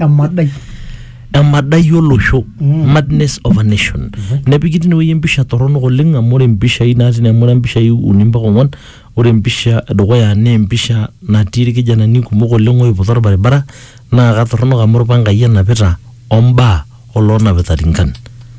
emadai emadai olosho madness of a nation nepiki tinewueji empisha torronok oleng amu ore impishai natii ine amu ore impishai uni mpaka ong'uan ore empisha edukuya naa empisha natii irkijanani kumok oleng oiputa orbaribara naa katorronok amu irpangai enapita ombaa oloonapita rinkan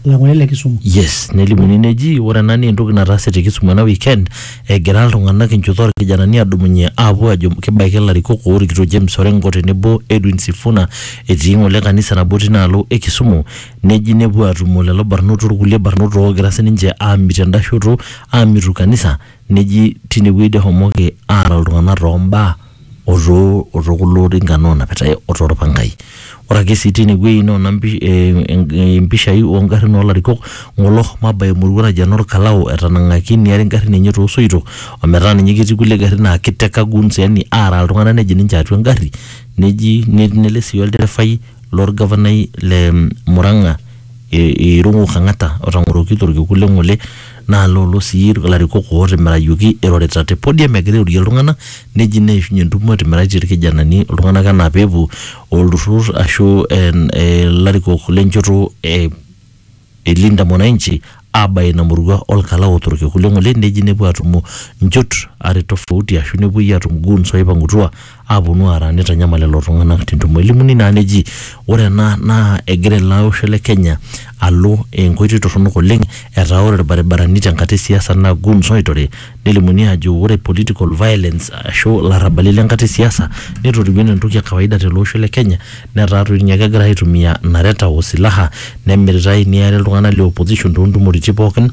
Lang'ole le Kisumu. yes nelimuni neji ore ena naa entoki nataase te Kisumu ena weekend egira iltung'anak enchoto orkijanani adumunye aapuo ajo kibaiki ilarikok oorikito James Orengo tenebo Edwin Sifuna etii ng'ole kanisa nabo tinaalo e Kisumu neji nepuo aatumo lelo barnot orkulie barnot oogira sininche aamit enda shoto aamitu kanisa neji tinewueji doi ehomoki aara iltung'anak toombaa o too o too kulo rinkan oonapitai o too lpangai. Ore ake sii teine wueji noona mpi ee mpishai oo ngarrin oo larikok ng'ole oshomo abaya emurua naji enoo lkalau etanang'aki neari ngarrin enye too soito o metaa ninye ketii kulie garrin naa keiteka goons yaani aaraa iltung'anak nejing ninche atua engarri neji nele sii olderefai lo lgavanai le Murang'a. i- irung'u Kang'ata otang'oroki torkiku le ng'ole naa loolo sii ilarikok ootimirakioki irorita te podium egira airorie iltung'ana neji neishunye entumo etimiraitie ilkijanani iltung'ana enaa peepuo olturrur ashu en- ilarikok le nchoto e e Linda Mwananchi aabaya ina murua olkala ootorok ekulie ng'ole neji nepuo aatumo nchot are tofauti ashu nepuoi aatum goons ooipang'utua aaponu aara neitanyamal lelo tung'anak tentumo. Elimuni naa neji ore ena naa egira ele osho le Kenya alo enkoitoi torronok oleng etaa ore ilbaribarani tenkata e siasa naa goons ooitore Nelimuni ajo ore political violence ashu ilarrabali le nkata e siasa netorikio enaa entoki e kawaida tele osho le Kenya netaa toi ninye kegirai aitumia nareta o silaha nemiritai neari iltung'anak le opposition too ntumoritin pookin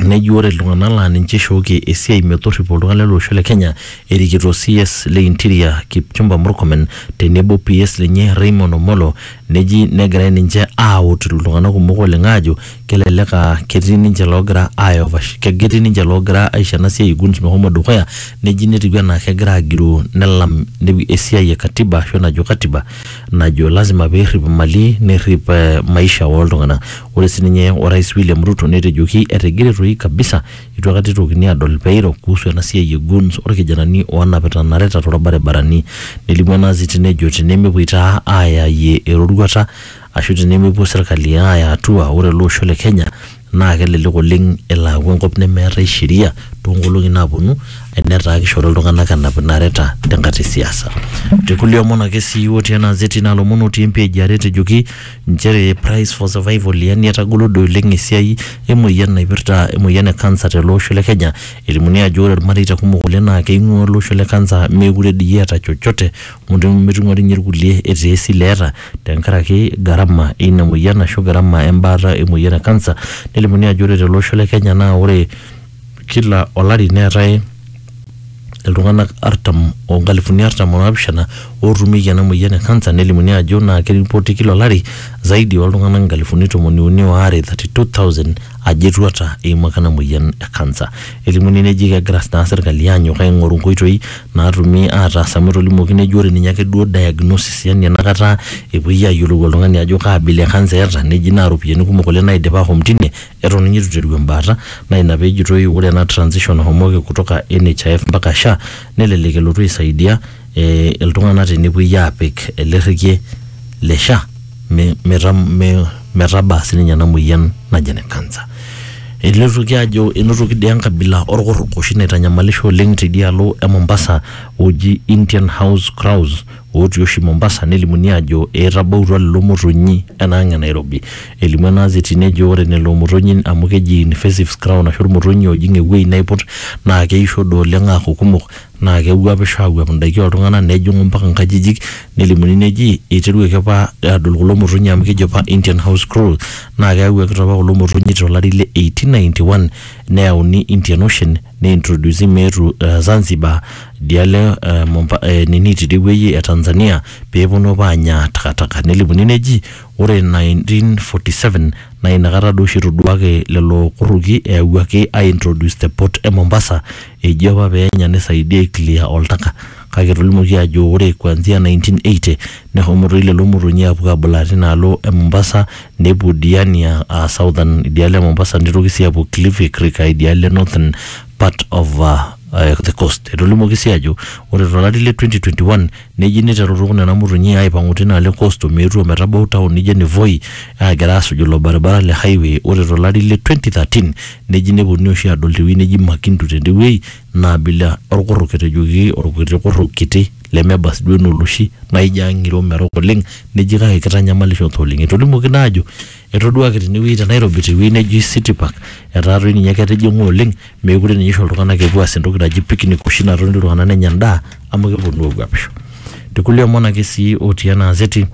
neji ore iltung'anak laa ninche eishooki esiai metorripo iltung'anak lele osho le Kenya erikito CS le interior Kipchumba Murkomen tenebo o PS lenye Raymond Omollo neji negirai ninche aawot iltung'anak kumok oleng aajo kelelek aa ketii ninche loogira aiovash ketii ninche loogira aisho ena siai guns mehomo dukuya neji netiu enaa kegira agiroo nelam ne- esiai e katiba ashu enajo katiba najo lazima peerrip imali nerrip eh, maisha oltung'anak ore sininye orais William Ruto netejoki etigire toi kabisa itu akata itokini adol peiro kuhusu ena siai e guns orkijanani onapita nareta torbaribarani nelimu ena aziti nejo tenemepuoi taa ayayie eroruata Ashu tenemepuo serkali aaya atua ore ele osho le Kenya naa kelelek oleng elo aaku enkop nemeetae sheria too nkolong'i naaponu enetaa kishori iltung'anak enap inareta tenkata e siasa. Te kulie omon ake sii otii ena azeti naa ilomon otii empage e are etejoki inchere price for survival yaani etagolo doi oleng esiai emoyian naipirta emoyian e cancer tele osho le Kenya. Elimuni ajo ore irmareita kumok oleng naa keing'ua ele osho le cancer meekure dii eeta chochote amu metum ninye irkulie etaa esile eeta tenkaraki gharama eina moyian ashu gharama embaata emoyian e kansa. Nelimuni ajo ore tele osho le Kenya naa ore kila olari neetae iltung'anak artam o nkalifuni artam o naapishana ootumieki ena moyian e kansa nelimuni ajo naa keripoti kila olari zaidi ooltung'anak nkalifuni tomoni uni o are, 32,000, ajo etuata eimaka ena moyian e kansa. Elimuni neji kegira naa serkali aanyok aing'oru nkoitoi naatumi aataas amu etolimuoki neji ore ninye ake duo diagnosis yani enakata epuoi ayiolou oltung'ani ajo kaa abila e kansa eeta neji naa iropiyiani kumok oleng naidipa ahom tine eton ninye eitu iteru embaata naa ina peejitoi ore ena transition nahomoki kutoka NHIF mpaka SHA nelelek elotu aisaidia eh iltung'anak tenepuoi aapik ele rrekie le SHA. me- meta- me- metabaa sininye ena moyian naji ene kansa elotoki ajo enotoki dii enkabila orkurruk oshi naitanyamalisho oleng tidialo e mombasa oji indian house crows otii oshi mombasa nelimuni ajo etabautua lelo motonyi enaang e nairobi elimu ena azeti nejo ore lelo motonyi amu keji invasive crown ashu irmotonyi ojing ewueji naiput naa keisho doi oleng aaku kumok naa kewuapisho aawuap indaiki ooltung'ana nejing'u mpaka nkajijik nelimuni neji eiteruaki apa aadol kulo motonyi amu keji apa Indian house crow naa keyawuaki taa apa kulo motonyi to lari le 1891 neyauni Indian ocean neintrodusi meetu Zanzibar idialo e Momba e nini tidie wueji e Tanzania peeponu apa aanya takataka nelimuni neji ore 1947 naa inakata dooshi etoduaki lelo kurruki eyawuaki aintroduce te port e Mombasa Eji apa pee enya neisaidia aiclear oltaka kake etolimuoki ajo ore kuanzia 1980 neshomo toi lelo motonyi aapuo aabulaa tina alo e Mombasa nepuo Diani aa aa Southern idialo e Mombasa neitoki sii aapuo Kilifi Creek aa idialo e Northern part of the coast. Etolimuoki sii ajo ore to lari le 2021 Neji neiterutu nena motonyi aaipang'u teina alo e coast o meetu o metabau town nijo ene Voi aagira aasuj ilo baribara le highway ore to lari le 2013 neji neponunui oshi aadol te wueji neji Makindu tende wueji naa abila olkurruk etejoki olkiti kurruk kiti lemeba sii duo enaa oloshi naa ijo ang'iro merok oleng neji kake keitanyamalisho taa oleng. Etolimuoki naa aajo etoduaaki tene wueji te Nairobi te wueji neji City Park etaa toi ninye ketijing'a oleng meekure ninye isho iltung'anak epuo aas entoki naji picnic oshi natoni iltung'anak nenya endaa amu keponu aaguapisho tekulie omon ake sii otii ena azeti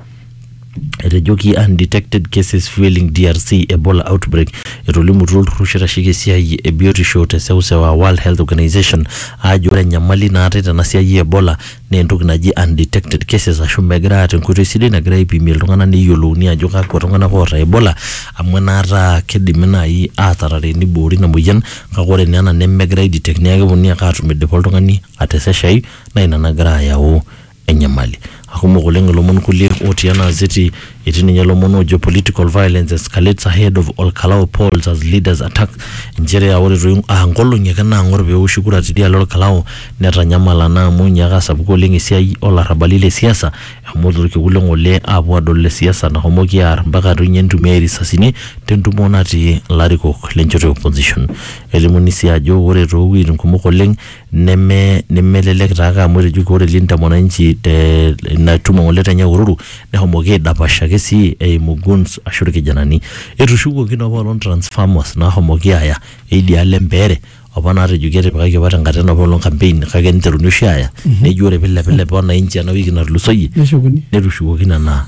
etejoki undetected cases fueling DRC Ebola outbreak etolimutuo olturrur oshi oitasheki esiai e biotisho te seuseu aa World Health Organization aajo ore enyamali naatae tena siai e Ebola naa entoki naji undetected cases ashu megira aata enkoitoi sidai nagira aipimie iltung'anak neyiolouni ajo kakwa tung'anak oota ebola amu enaata kidimi naaji atarare niboori ina moyian kake ore naa ena nemegirae ae detect niaku keponunui ake atum idipa oltung'ani ateseshai naa ina nagira ayau enyamali akumok oleng ilomon kulie otii ena azeti. Etii ninye lomon ojo political violence escalates ahead of Olkalau polls as leaders attack inchere aa ore toi aa nkolong'i ake naang'or pee eoshi kura tidialo Olkalau netanyamala naa amu inyiaka asapuku oleng esiai oo larrabali le siasa eshomoki olkekun le ng'ole aapuo aadol le siasa nashomoki aar mpaka toi ninye neitumiai risasini te ntumo natii ilarikok le nchoto e opposition. Elimuni sii ajo ore too wueitin kumok oleng neme nemelelek taake amu etejoki ore Linda Mwananchi te ina tumo ng'ole te Nyahururu nehomoki aidapash ake sii eimu guns ashu irkijanani. Etushukuoki naa apaelong transformers naahomoki aaya eidialo empeere opa naatejoki etipikaki opa tenkata ena paelong campaign kake niteruni oshi aaya neji ore piilepilep wananchi ena wiki natulusoyie Neshukuni. netushukoki nena